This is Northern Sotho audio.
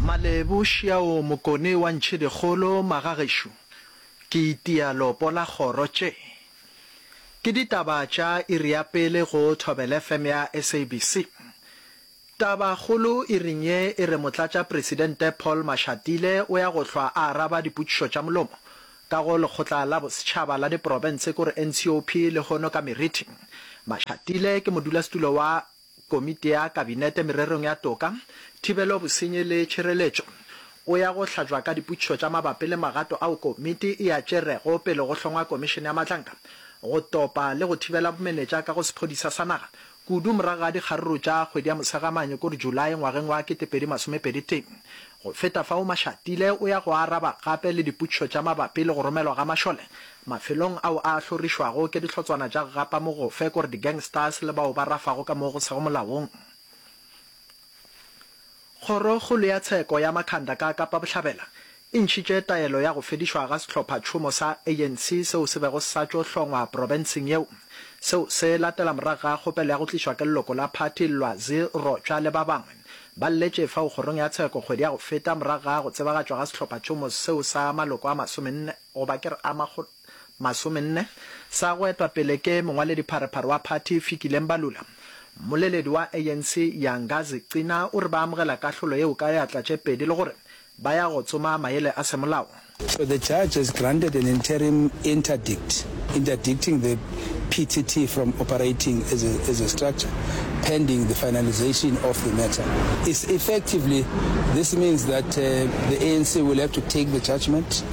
Malebo šiaoo mokone wa ntšhedikgolo magagešo ke itia lopo la kgoro tše ke ditaba tša iri ya pele go thobelfm ya sabc taba kgolo iring ye e re motlatša presidente paul mashatile o ya go hlwa a araba dipotšišo tša molomo ka go lekgotla la bosetšhaba la diprobence kore ncop le hono ka merithing mashatile ke modulasetulo wa Komiti ya Kabinete Mererong ya Toka, Thibelo, Bosenyi le Tšhireletšo, o ya go hlajwa ka dipotšišo tša mabapi le magato ao komiti e a tšerego pele go hlongwa Komišene ya Matlanka go Topa le go Thibela Bomenetša ka go Sephodisa sa Naga, kudu morago ga dikgaruru tša kgwedi ya Mosegamane kod Julae ngwageng wa 2021. Go feta fao, Mashatile o ya go araba gape le dipotšišo tša mabapi le go romelwa ga mašole Mafelong ao a hlorišwago ke dihlotswana tša gapa mogofe kore di-gangsters le bao ba rafago ka moo go sego molaong. Kgorokgolo ya Tsheko ya Makhanda ka Kapa Bohlabela e ntšhitše taelo ya go fedišwa ga sehlopha-tšhomo sa ANC seo se bego sa tšo hlongwa profenseng yeo. Seo se latela morago ga kgopelo ya go tlišwa ke leloko la phathi Lwazi Rotshwa le ba bangwe. Ba lletše fao kgorong ya Tsheko kgwedi ya go feta morago ga go tsebagatšwa ga sehlopha-tšhomo seo sa maloko a masomenne. goba ke re a makgolo masomenne, sa go etwa pele ke mongwaledipharephare wa phathi Fikile Mbalula. Mmoleledi wa ANC Yangazi Cina o re ba amogela kahlolo yeo ka eatla tše pedi le gore ba ya go tsoma maele a semolao. So the judge has granted an interim interdict interdicting the PTT from operating as a as a structure pending the finalisation of the matter. Is effectively this means that the ANC will have to take the judgement.